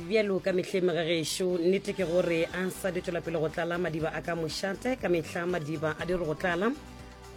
bjalo ka mehleng ga gešo nnete ke gore a sa di tswela pele go tlala madiba a ka mošate ka mehla madiba a dire go tlala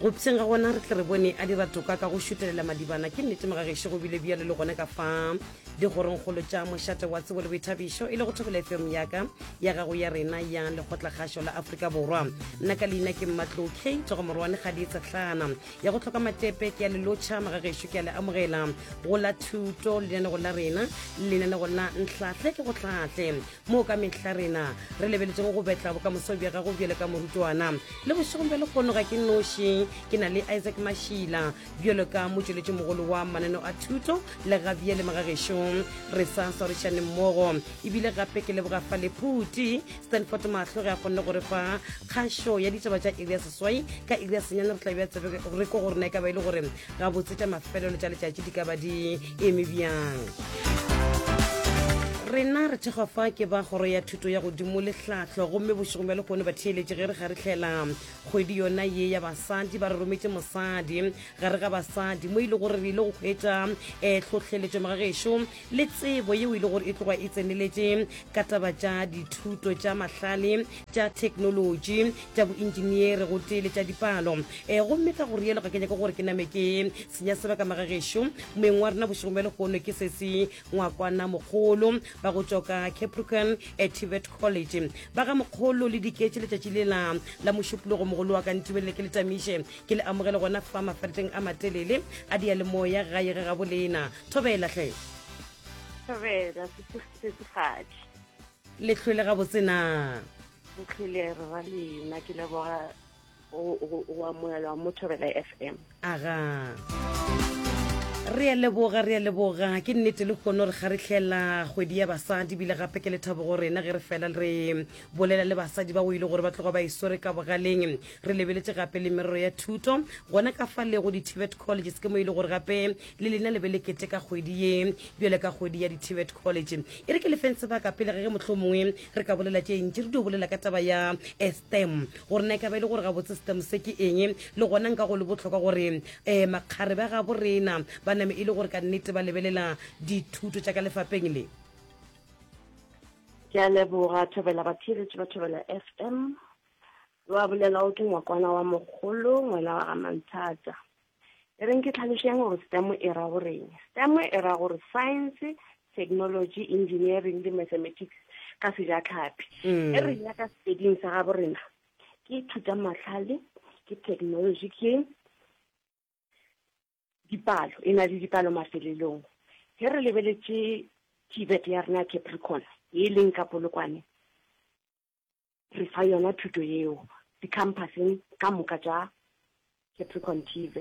go pšeng ga gona re tle re bone a dira toka ka go šutelela madibana ke nnete ga gešo go bile bjalo le gone ka fa digorongkgolo tša mošate wa tsebo le boithabišo e le go thobela fm yaka ya gago ya rena ya lekgotlakgašo la aforika borwa nna ka leina ke mmatlo k togomorwane ga di etsatlana ya go tlhoka matepe ke ya le lotšha magagešo ke ya le amogela go la thuto lenanego la rena lenanego la nhlahle ke go hlahle moo ka mehla rena re lebeletsego go betla bokamoso bja gago bjale ka morutwana le bošegong bja lekgono ga ke noši ke na le isaac mašila bjalo ka motšweletši mogolo wa mananeo a thuto le gabjale magagešong re sa swarišaneng mmogo ebile gape ke leboga fa lephuti stanford mahlo ge a kgonne gore fa kgašo ya ditaba tša iri ya seswai ka iri ya senyane re tla bja tsebe re ko gore na e ka ba e le gore gabotse tša mafelelo tša letšatši di ka ba di eme bjang rena re thekgwa fa ke ba kgoro ya thuto ya godimo lehlahlo gomme bošegong bja lekgone ba theeletše ge re ga re tlhela kgwedi yona ye ya basadi ba re rometse mosadi gare ga basadi mo e le gore re ile go kgwetša um tlhohleletšo magagešo le tsebo yeo e le gore e tloga e tseneletše ka taba tša dithuto tša mahlale tša theknolotši tša boengineere go tee le tša dipalo um gomme ka go rielo ga ke nyake gore ke name ke senya sebaka magagešo moeng wa rena bošegong bja lehono ke sesi ngwakwana mogolo ba go tšoka capricorn at tibet college ba ga mokgolo le diketše letšatši le la la mošupologo mogolo wa ka ntibelele ke le tamiše ke le amogele gona fa mafaleteng a matelele a diyalemoya gae ge gabolena thobela hle thobela setsifatši le hlwele gabotse na re hlwele re ra lena ke leboga o amogelwa mo thobela f m aga re a leboga re a leboga ke nnete le kgono re kgaretlhela kgwedi ya basadi bile gape ke lethabo go rena ge re fela re bolela le basadi ba o ile gore ba tloga ba e swere ka bogaleng re lebeletse gape le merero ya thuto gona ka fa lego di-tibet colleges ke mo e le gore gape le lena le be le kete ka kgwedi ye bjale ka kgwedi ya di-tibet college e re ke lefeng sebaka pele ge ge motlho mongwe re ka bolela tše ntši re dio bolela ka taba ya eh, stem gore na e ka ba e le gore ga botse stem se ke eng le gona nka go le botlhokwa gore um eh, makgare ba gabo rena ba name e le gore ka nnete ba lebelela dithuto tša ka lefapeng le ke a leboga thobela bathiretši ba thobela f m wa bolela o ke ngwakwana wa mogolo ngwana wa ga manthata E reng ke tlhalošeng gore STEM e ra goreng. STEM e ra gore Science, Technology, Engineering le Mathematics ka sejatlhapi. Mm. E reng ya ka sepeding sa gabo rena ke thutamahlale, ke technology, ke dipalo, e na le dipalo mafelelong. Ge re lebeletše Tibet ya rena Capricorn, e leng ka polokwane, re fa yona thuto yeo dikhampaseng ka moka tša Capricorn TZ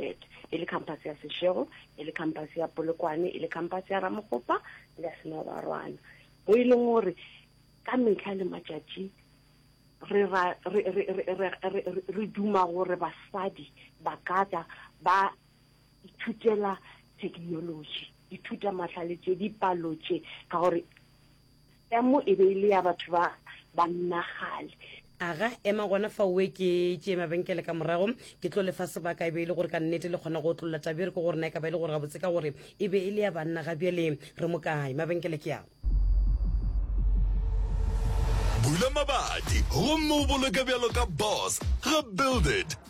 e le khampase ya Seshego e le khampase ya Polokwane e le khampase ya Ramogopa le ya Senobarwana mo e leng gore ka metlha le matšatši re ra re re re re re re duma gore basadi ba ka tla ba ithutela technology ithuta mahlale tše dipalo tše ka gore ya mo e be e le ya batho ba bannagale aga ema gona fa oe ke tšee mabenkele ka morago ke tlo lefa sebaka e be e le gore ka nnete le kgona go otlolola tabe re ko gore na e ka ba e le gore gabotse ka gore e be e le ya banna ga bjale re mo kae mabenkele ke ao bula mabadi gomme o boloke bjalo ka boss ga build it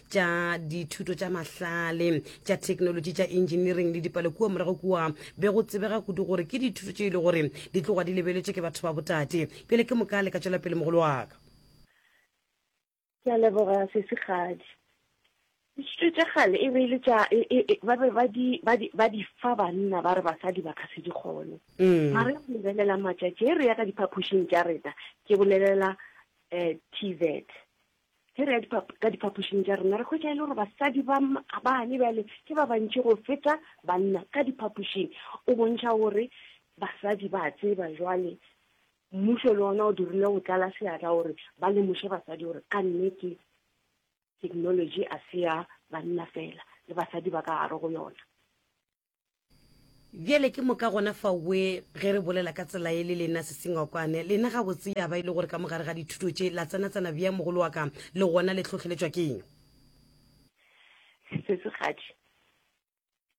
tša dithuto tša mahlale tša thekenolotši tša engineering le dipalo kua morago kua be go tsebega kudu gore ke dithuto tše e le gore di tloga di lebeletše ke batho ba botate pele ke moka le ka tšwela pele mogolo wa ka ke a leboga sesigadi dithuto tša gale e be e le tša e, e, e, ba be ba di fa banna ba re basadi ba ka se di kgone mm. mare go lebelela matšatši e re ya ka diphaphošing tša rena ke bolelela um eh, t vet Ge re ya dipap ka diphapošing tša rena, re hwetša e le gore basadi ba bane bjale ke ba bantši go feta banna ka diphapošing. O bontšha gore basadi ba tseba jwale mmušo le ona o dirile go tlala seatla gore ba lemoše basadi gore ka nnete technology a se ya banna fela, le basadi ba ka gare go yona. Bjale ke moka gona faue ge re bolela ka tsela ye le lena sesengwakwane, lena gabotse ya ba e le gore ka mogare ga dithuto tše la tsena-tsena bjang mogolo wa ka, le gona le hlohleletšwa keng? Sesegading,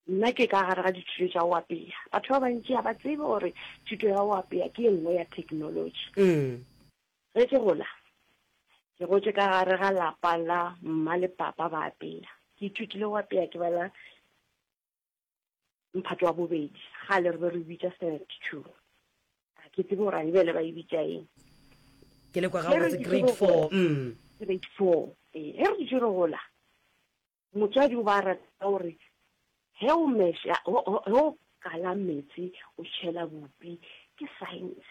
Nna ke ka gare ga dithuto tša go apea. Batho ba bantši ga ba tsebe gore thuto ya go apea ke e nngwe ya theknolotši. Ge ke gola, ke gotše ka gare ga lapa la mma le papa ba apea. Ke ithutile go apea ke bala mphato wa bobedi gale re be re bitša seventy two a ke tsebe gore a e bele ba e bitša eng ke le kwa ga botse grade four mm. grade four ee ge re dutše re gola motswadi o ba rata gore ge o mesha ge o kala metsi o tšhela bopi ke science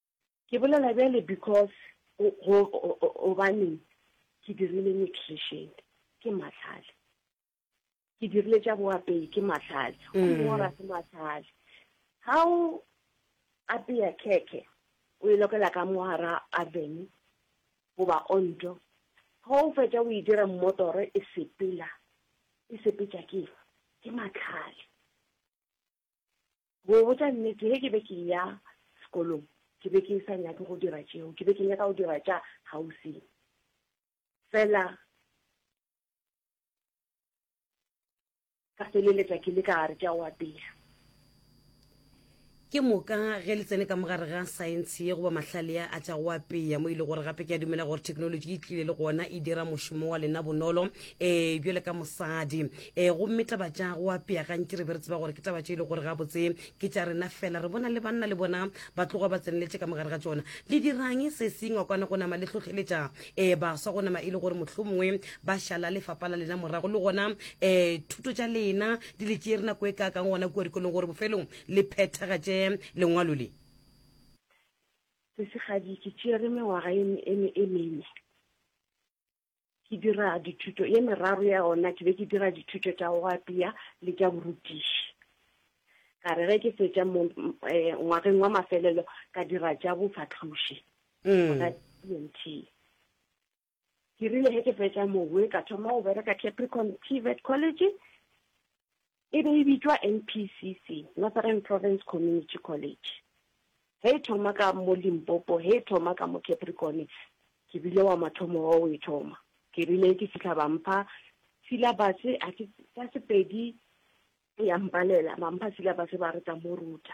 Ke bolela bjale because go, go, go, gobaneng ke dirile nutrition, ke mahlale. Ke dirile tša boapei, ke mahlale. O Mm. mora ke mahlale. Ga o apeya khekhe, o e lokela ka mohara avene, goba onto. Ga o fetša o e dira mmotoro, e sepela. E sepetša ke eng? Ke mahlale. Go botša nnete, ge ke be ke eya sekolong, ke be ke sa nyake go dira tšeo, ke be ke nyaka go dira tša kgauswi fela. Ka feleletša ke le ka gare tša go apea. Ke moka ge le tsene ka mo gare ga saense ye goba mahlale a a tša go apea, mo e le gore gape ke a dumela gore theknolotši e tlile le gona e dira mošomo wa lena bonolo. um bjale ka mosadi um eh, gomme taba tša go apea gantši re be re tseba gore ke taba tše e le gore gabotse ke tša rena fela re bona le banna le bona ba tloga ba tseneletse ka mogare ga tsona le dirang se sengwa kwana go nama le tlhotlheletša um eh, baswa go nama e le gore motlho mongwe ba šala lefapa la lena morago le gona um thuto tša lena di le tšee re nako e kaakang gona kua dikolong gore bofelong le phethagatše lengwalo le sesegadi ke tšere mengwaga e mene ke dira dithuto ye meraro ya ona ke be ke dira dithuto tša go apea le tša borutiši ka re ge ke fetša mo eh, ngwageng wa mafelelo ka dira tša bofahloši mm. ka tnt ke rile ge ke fetša mowe ka thoma go bereka capricorn tvet college E be e bitšwa NPCC, Northern Province Community College. Ge e thoma ka mo Limpopo, ge e thoma ka mo Capricorn, ke bile wa mathomo wa go e thoma. Ke rile ke fihla ba mpha syllabus, a ke ka Sepedi ya mpalela, ba mpha syllabus ba re tla mo ruta.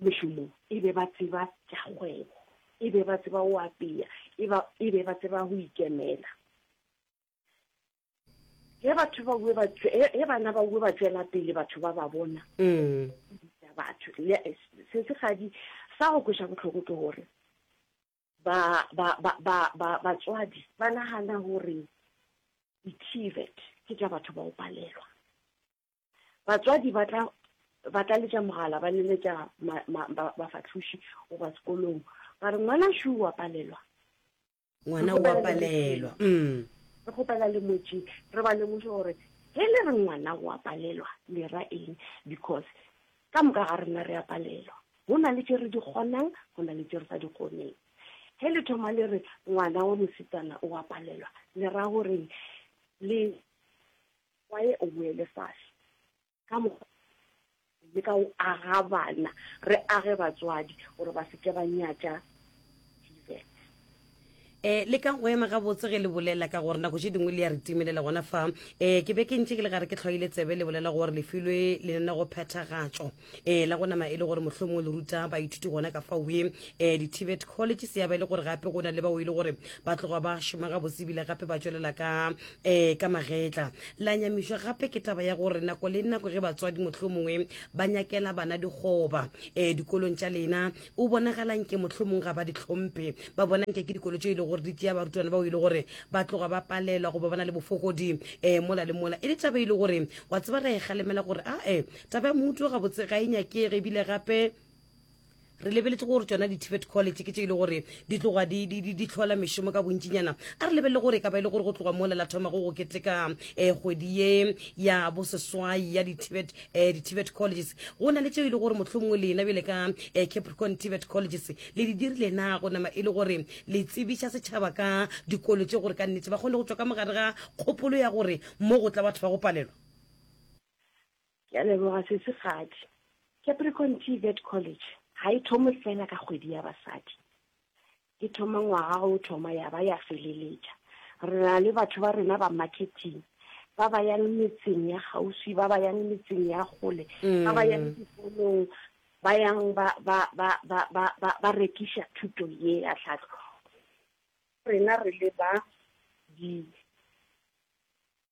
mešomong, e be ba tseba tša kgwebo, e be ba tseba go apea, e, ba, e be ba tseba go ikemela. Ge batho ba bue ba ge bana ba bue ba tšwela pele batho ba ba bona mm. batho se se gadi sa go kwesa botlhoko ke gore ba ba ba ba ba batswadi ba nagana gore di-tvet ke tša batho ba o palelwa Batswadi ba tla ba tla letša mogala ba leletša ma, ma, ba, bafahloši goba sekolong ba re ngwana Shu wa palelwa. Ngwana o a palelwa. Mm. Re kgopela le motši re ba lemoše gore ge le re ngwana o a palelwa le ra eng because ka moka ga rena re a palelwa. Go na le tše re di kgonang, go na le tše re sa di kgoneng. Ge le thoma le re ngwana wa mosetsana o a palelwa le ra goreng le Wa ye o boele fase. Ka mo le ka o aga bana, re age batswadi gore ba se ke ba nyatša Jesus. E, le ka go ema gabotse ge le bolela, ka gore nako tše dingwe le ya re timelela gona fa. E, ke be ke ntše ke le gare ke tlhwaile tsebe le bolela gore le filwe lenanegophethagatšo. um la go nama e le gore mohlomong le ruta baithuti gona ka fa we um eh, di-tibet college se ya ba e le gore gape go na le bao e le gore ba tloga ba šoma ga bosebile gape ba tswelela ka um ka magetla la nyamišwa gape ke taba ya gore nako le nako ge batswadi motlho mongwe ba nyakela bana dikgoba um dikolong tša lena o bonagalang ke motlho mongwe ga ba ditlhomphe ba bonang ke ke dikolo tše e le gore di tšea barutwana bao e le gore ba tloga ba palelwa goba ba na le bofokodi um mola le mola e le taba e le gore wa tseba ra e galemela gore ae taba ya mouto gabotse ga e nyakege ebile gape re lebeletse gore tsona di-tibet college ke tse e le gore di tloga di tlhola mešomo ka bontšinyana a re lebelele gore e ka ba e le gore go tloga molela thoma go go keteka um kgwedi ye ya boseswai ya di-tibet eh, colleges go na le tse e le gore mohlomongwe lena bjele ka um capricorn tibet colleges le di dirile na go nama e le gore le tsebiša setšhaba ka dikolo tse gore ka nnetse ba kgone go tswa ka mogare ga kgopolo ya gore mo go tla batho ba go palelwa Ke a leboga sesi Kgadi. Capricorn TVET College ga e thome fela ka kgwedi ya basadi. E thoma ngwaga o thoma ya ba ya feleletša. Re na le batho ba rena ba marketing ba ba yang metseng ya kgauswi, ba ba yang metseng ya kgole, ba ba yang dikolong, ba yang ba ba ba ba ba ba ba rekiša thuto ye ya tlhahlo. Rena re le ba di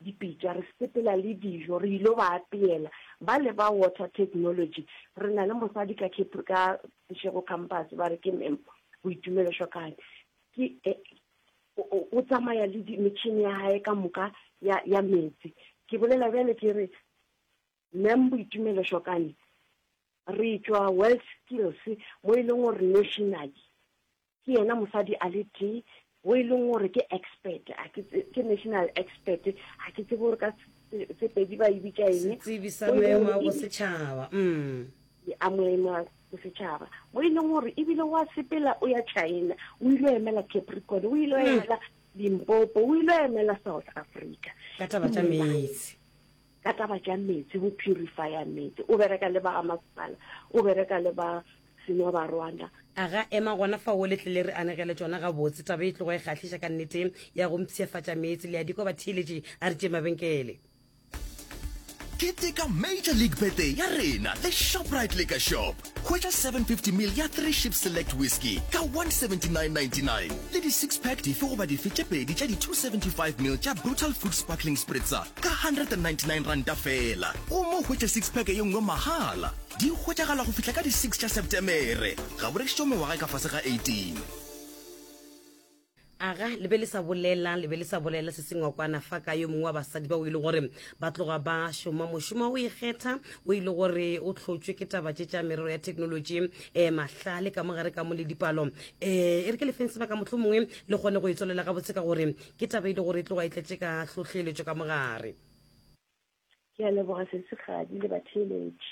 dipitša, re sepela le dijo, re il'o ba apeela. Ba le ba Water Technology, re na le mosadi ka Cape, ka Seshego Campus, ba re ke Ma'am Boitumelo Shokane, ke, o, o tsamaya le di, metšhini ya gae ka moka ya, ya meetse. Ke bolela bjale ke re, Ma'am Boitumelo Shokane, re tšwa WorldSkills mo e leng gore nationally ke yena mosadi a le tee o e leng gore ke expert ke national expert ga ke tsebe gore ka sepedi ba e bitša eng setsebi sa maemo a bosetšhaba mm a moemo a bosetšhaba mo e leng gore ebile wa sepela o ya china o ile o emela capricorn o ile o hmm. emela limpopo o ile o emela south africa ka taba tša meetse ka taba tša metsi go purifier metsi o bereka le ba ga masepala o bereka le ba senwa ba rwanda a ga ema gona fa o letlele re anegele tšona ga botse taba e tlogo e kgahliša ka nnete ya go mpshiafatša metsi le ya diko ba theeletše a re tše mabenkele Keteka Major League Birthday ya rena le Shoprite Liquor Shop. Hwetša 750 mil ya Three Ships Select Whisky ka 179.99 le di-six pack dife goba dife tše pedi tša di-275 mil tša Brutal Food Sparkling Spritzer ka 199 ranta feela gomme o hwetše six pack ye nngwe mahala. Di hwetšagala go fihla ka di-six tša Setemere. Ga bo rekišitšwe mengwaga e ka fase ga 18. Aga le be le sa bolela, le be le sa bolela se sengwe kwana fa ka yo mongwe wa basadi ba o ile gore ba tloga ba šoma mošomo o ikgetha o ile gore o tlhotšwe ke taba tše tša merero ya thekenolotši um eh, mahlale ka mo gare ka mo le dipalo um eh, e re ke lefeng sebaka motlho mongwe le kgone go e tswelela gabotse ka gore ke taba e le gore e tloga e tletše ka hlohleletšo ka mogare ke a leboga sesigadi le batheeletši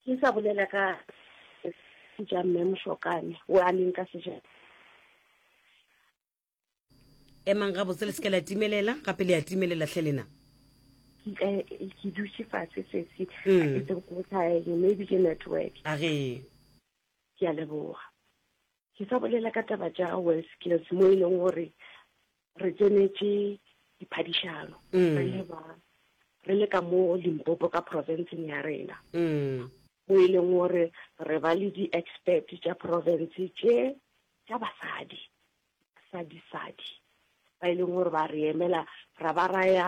Ke sa bolela ka se ja mme Mošokane o a leng ka sejana. emang gabotse le se ke la timelela gape le a timelela tlhe lena Ke ka ke dutše fatshe sesi. Mm. It's a good time. Maybe ke network. a ge Ke a leboga. Ke sa bolela ka taba tša WorldSkills mo e leng gore re tsenetše diphadišano mm. re le ba re le ka mo Limpopo ka provinceng ya rena mm. mo e leng gore re ba le di-expert tša province tše tša basadi basadi-sadi ba e leng gore ba re emela ra ba raya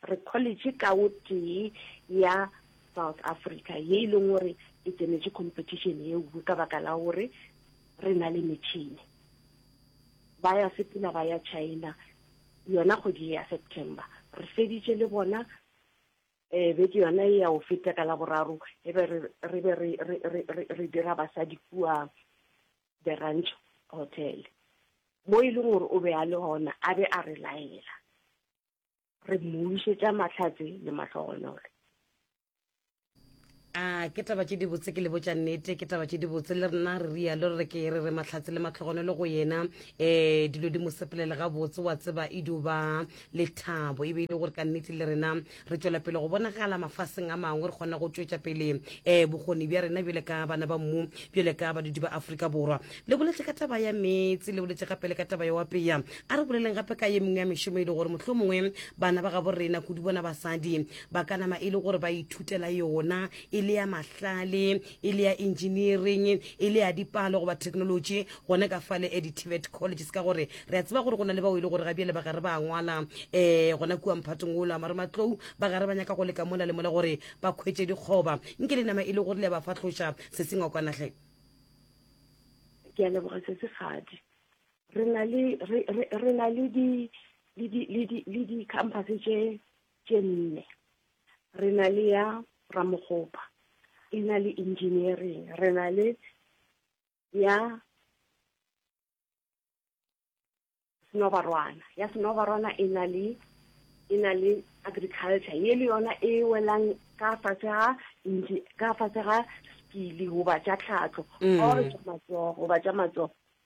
Re college ka o tee ya South Africa ye e leng gore e tsenetše competition ye nngwe ka baka la gore re na le metšhini. Ba ya sepela ba ya China yona kgwedi ye ya September. Re feditše le bona um beke yona ye ya go feta ka Laboraro e be re re be re re re re re dira basadi kua The Ranch Hotel mo e leng gore o be a le gona a be a re laela. re mmušetša mahlatse le mahlogonolo a ke taba tše dibotse ke le botša nnete ke taba tše dibotse le rena re rialo re ke re re mahlatse le matlhogonelo go yena um dilo di mo sepelele gabotse wa tseba e duba lethabo e be e le gore ka nnete le rena re tšwela pele go bonagala mafaseng a mangwe re kgona go tšwetša pele um eh, bokgoni bja rena bjale ka bana ba mmu bjale ka badudi ba aforika borwa le boletse ka taba ya meetse le boletse gape le ka taba ya wapeya a re boleleng gape ka ye mengwe ya mešomo e le gore motlho mongwe bana ba gabo rena kudu bona basadi ba ka nama e le gore ba ithutela yona e le ya mahlale e le ya engineering e le ya dipalo goba technology gone ka fale e di-tivet colleges ka gore re a tseba gore go na le bao e le gore ga bjale ba gare ba ngwala um gona kua mphatong o lamare matlou ba gare ba nyaka go leka mola le mola gore ba kgwetse dikgoba nke le nama e le gore le ya ba fahloša se sengwakwanageng ke a leboga sesegadi re na le re re re na le di le di le di le di campus tše tše nne re na le ya ramokgopa e na le engineering re na le ya senobarwana ya senobarwana e na le e na le agriculture ye le yona e welang ka fatshe ga ka fatshe ga skili goba tša tlhatlo mm. or tša matsogo goba tša matsogo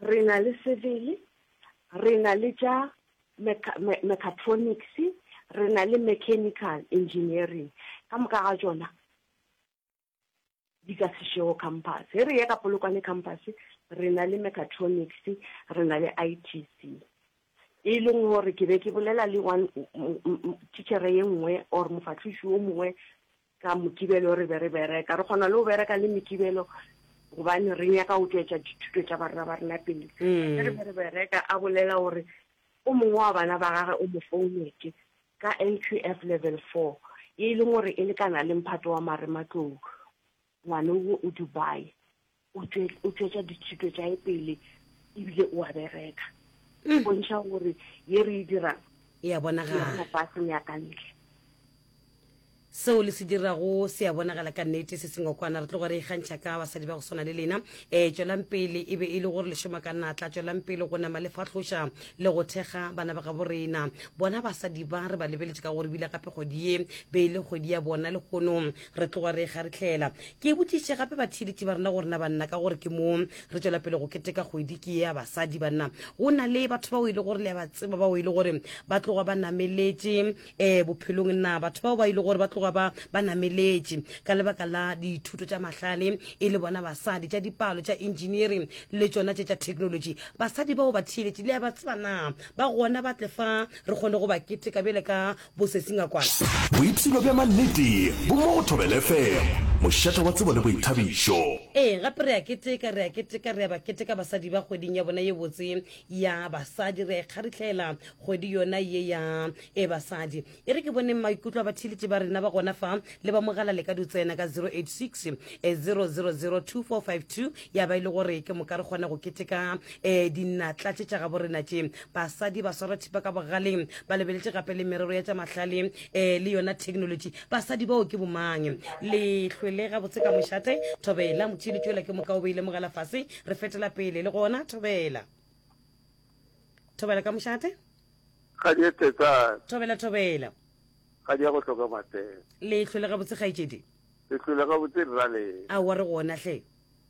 Re na le civil, re na le tša mechatronics, re na le mechanical engineering. Ka moka ga tšona di ka Seshego campus. Ge re ya ka Polokwane campus re na le mechatronics, re na le ITC. E leng gore ke be ke bolela le one teacher ye nngwe or mofahloši yo mongwe Ka Mokibelo re be re bereka. Re kgona le go bereka le Mekibelo gobane re nyaka go tšwetša dithuto tša barna ba rena pele. Ge re be re bereka, a bolela gore o mongwe wa bana ba gage o mo founetše ka NQF Level Four, ye e leng gore e lekana le mphato wa marematlou. Ngwane wo o Dubai. o tšwetša ditšhito tša e pele ebile o a bereka mm. bontšha gore ye re e dirang e ya bonagala faseng ya ka ntle seo le se dirago se ya bonagala ka nnete se sengwe kwana re tlogo re ikgantšha ka basadi ba go swana le lena um tswelang pele e be e le gore lešoma ka natla tswelang pele go nama le fahloša le go thekga bana ba gabo rena bona basadi ba re ba lebeletse ka gore bile gape kgwedi ye be e le kgwedi ya bona le kgonong Re tloga re ekga re tlhela. Ke botšišitše gape batheeletši ba rena gore na banna ka gore ke mo re tšwela pele go keteka kgwedi ke ye ya basadi banna go na le batho bao e le gore le ya ba tseba bao e le gore ba tloga ba nameletše um eh, bophelong na batho bao ba e le gore ba tloga ba ba nameletše ka lebaka la dithuto tša mahlale e le bona basadi tša dipalo tša engineering le tšona tše tša technology basadi bao batheeletši le ya ba tseba na ba gona ba tle fa re kgone go ba keteka bjale ka Boipshino bja mannete bo mo go Thobela FM, mošata wa tsebo le boithabišo. Ee, gape re a keteka, re a keteka, re a ba keteka basadi ba kgweding ya bona ye botse ya basadi. Re a e kgaritlhaela kgwedi yona ye ya e basadi. E re ke boneng maikutlo a batheeletši ba rena ba gona fa, le ba mogala le ka di tsena ka 0860002452 ya ba e le gore ke moka re kgona go keteka um dinatla tše tša gabo rena tše. basadi ba swara thipa ka bogaleng ba lebeletše gape le merero ya tša mahlale um le yona technology basadi bao ke bomang le hlwele gabotse ka mošate thobela motšhini tšwela ke moka o beile mogala fase re fetela pele le gona thobela thobela ka mošate thobela thobela ga di ya go hloka matsela le hlwele gabotse kgaetšedi le hlwele gabotse rrale a wa re gona hle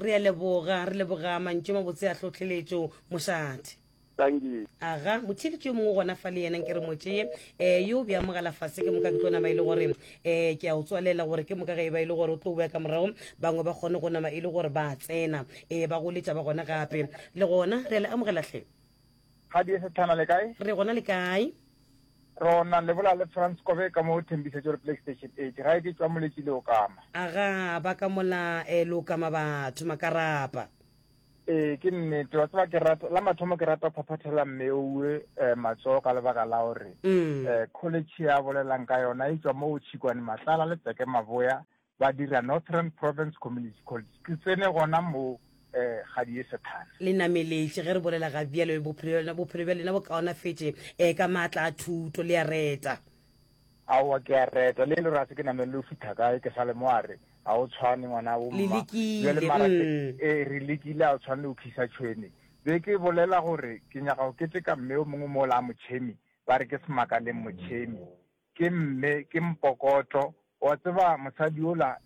Re a leboga, re leboga mantšu a mabotse a tlhohleletšo, mošate. Tangi. Aga, motheeletši yo mongwe gona fa le yena nke re mo tšee, um yo bja mogala fase ke moka ke tlo nama e le gore, um ke a o tswalela gore ke moka ge e ba e le gore o tlo boya ka morago, bangwe ba kgone go nama e le gore ba tsena, um ba goletša ba gona gape. Le gona, re a le amogela hle. Ga di esethana le kae? Re gona le kae? Rona le bola le France Kobe ka mo thembisetšo le PlayStation 8. Ga e ke tšwa moletši le okama. Aga ba ka mola eh, le okama batho makarapa. Ee, ke nnete. Wa tseba ke rata la mathomo ke rata phaphathela mme owe eh, matsogo ka lebaka la gore Mm. eh, college ya bolelang ka yona e tšwa mo o tšhikwane matlala le tseke maboya ba dira Northern Province Community College. Ke tsene gona moo ga di ye sethale. Le nameletše ge re bolela ga bjalo, bophelo, bophelo bja lena bo kaonafetše eh, ka maatla a thuto. Le a reta. Aowa, ke a reta. Le le rase ke namelele o fitha kae, ke sa le mo a re, Ga o tshwane ngwana wo, mma. Bjale mara ke, ee, re lekile, ga o tshwane le go khisa tšhwene. Be ke bolela gore ke nyaka go keteka mme yo mongwe mola a motšhemi, ba re ke Semakaleng Motšhemi. Ke mme, ke mpokotlo. O a tseba mosadi yola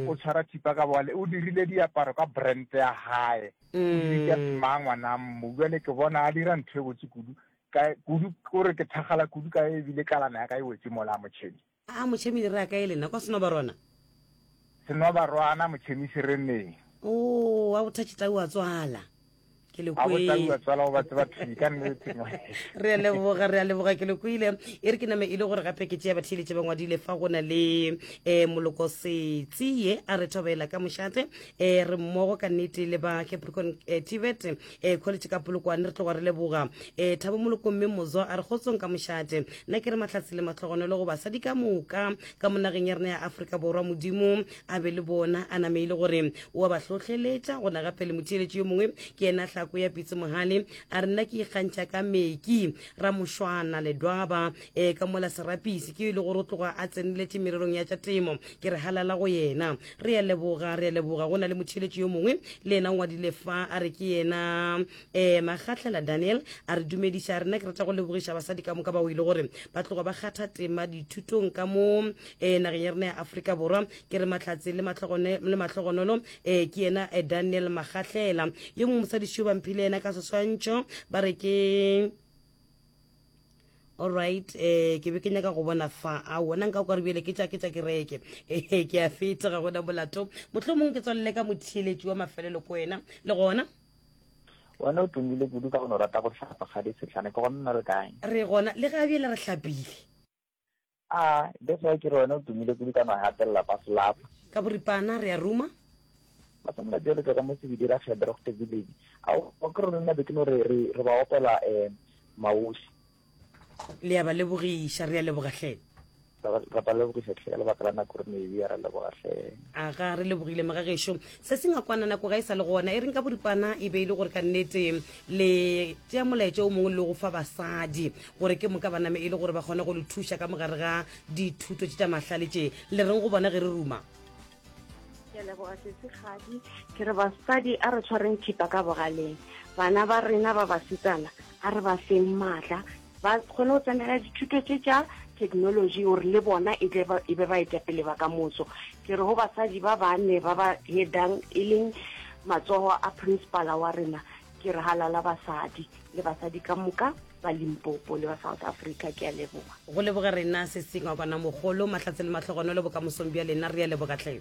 o tshwara thipa ka bogale, o dirile diaparo ka brand ya gae. O di bitša Tma ngwanang mmu. Bjale ke bona a dira ntho e botse kudu, ka kudu o re ke thakgala kudu ka ebile kalana ya ka e wetše mola, Mochemi. Aa, Mochemi le raa kae lena, kwa Senobarwana? Senwabarwana Motšhemisi re ne. Oo, wa go tha Tšitau a tswala. Ke le A go tla kwe. ua tswala go batse ba thudi ka nnete ngwaneso. Re a leboga, re a leboga. Ke le kwele. E re ke name e le gore gape ke tšea batheeletše ba ngwadile fa go na le um moloko setsie a re thobela ka mošate um re mmogo ka nnete le ba Capricorn um Tibet. e kgoletše ka polokwane re tloga re leboga e thabo moloko mme mozo a re kgotsong ka mošate nna ke re mahlatsi le matlhogonolo go basadi ka moka ka monageng ya rena ya aforika borwa modimo a be le bona a name ile gore o a ba hlohleletša gona gape le motheeletši yo mongwe ke ena tlhako ya pitse mogale a re nna ke ikgantšha ka meki ramošwana ledwaba e ka mola serapisi ke e le gore o tloga a tseneletše mererong ya tša temo Ke re halala go yena. Re a leboga, re a leboga. Go na le motheeletši yo mongwe le yena o ngwadile fa, a re ke yena um Magahlela Daniel, a re dumediša, a re, Nna ke rata go lebogiša basadi ka moka bao e le gore ba tloga ba kgatha tema dithutong ka mo um nageng ya rena ya Afrika Borwa. Ke re mahlatse le matlogone, le mahlogonolo, um ke yena um Daniel Magahlela. Yo mongwe mosadi šio ba mphile yena ka seswantšho, ba re ke. alright eh ke be ke nyaka go bona fa a wona nka kwa re bjele ke tša ke tša kereke ehe ke a feta ga gona molato motlho mongwe ke tswalele ka motheeletši wa mafelelo ko wena le gona wena o tumile kudu ka go no rata go hlapa ga di setlhane ke gona re kae re gona le ga bjele re hlapile Ah, that's why ke re wena o tumile kudu ka no hatelela ba slapa. Ka boripana re a ruma. Ba sa molato le tloga mo sebidi ra kgebe re gote village. A o ke re nna be ke no re re re ba opela eh maosi. Le ya ba lebogiša re a leboga hle. Ra ba lebogiša hle ka lebaka la nako re ne e ra leboga hle. Aga re lebogile mega gešo. Se se ngakwana nako ga e sa le gona. E reng ka boripana e be e le gore ka nnete le tšea molaetša o mongwe le go fa basadi. gore ke moka ba name e le gore ba kgone go le thuša ka mogare ga dithuto tše tša mahlale tše le reng go bona ge re ruma ke leboga sesigadi ke re basadi a re tshwareng thipa ka bogaleng bana ba rena ba basetsana a re ba feng maatla ba kgone go tsenela dithuto tše tša technology gore le bona e, e be ba etapele ba ka moso ke re go basadi ba bane ba ba headang e leng matsogo a principala wa rena Ke re halala basadi le basadi ka moka ba Limpopo le ba South Africa. Ke a leboga. Go leboge rena Sesingwa Kwana mogolo, mahlatse le mahlogonolo bokamosong bja lena, re a leboga tlhe.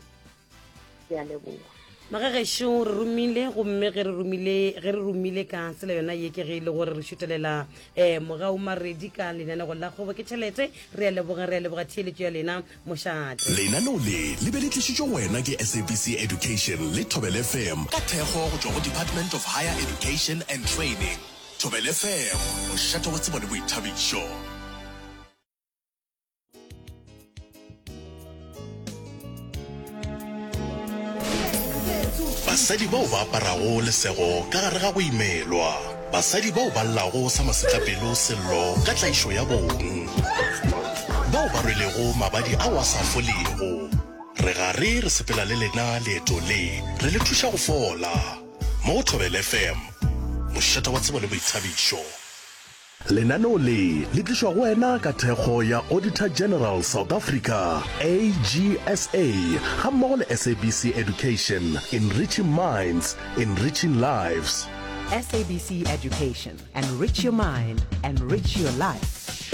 Ke a leboga. Maka gešo re romile gomme ge re romile ge re romile ka tsela yona ye ke ge e le gore re šutelela um mogaumaredi ka lenanego la kgobo ke tšhelete re a leboga re a leboga theeletšo ya lena. mošate. Lenaneo le le be le tlišitšwe go wena ke SABC Education le Thobel FM ka thekgo go tšwa go Department of Higher Education and Training. Thobel FM, mošate wa tsebo le boithabišo. Basadi bao ba aparago lesego ka gare ga go imelwa. Basadi bao ba llago sa masetlapelo sello ka tlaišo ya bong. Bao ba rwelego mabadi ao a sa folego. Re gare re sepela le lena leeto le, re le thuša go fola. Mo go Thobela FM, mošate wa tsebo le boithabišo. Lenaneo le le tlišwa go wena ka thekgo ya Auditor General South Africa, AGSA, gammogo le SABC Education, Enriching Minds, Enriching Lives. SABC Education, Enrich your mind, enrich your life.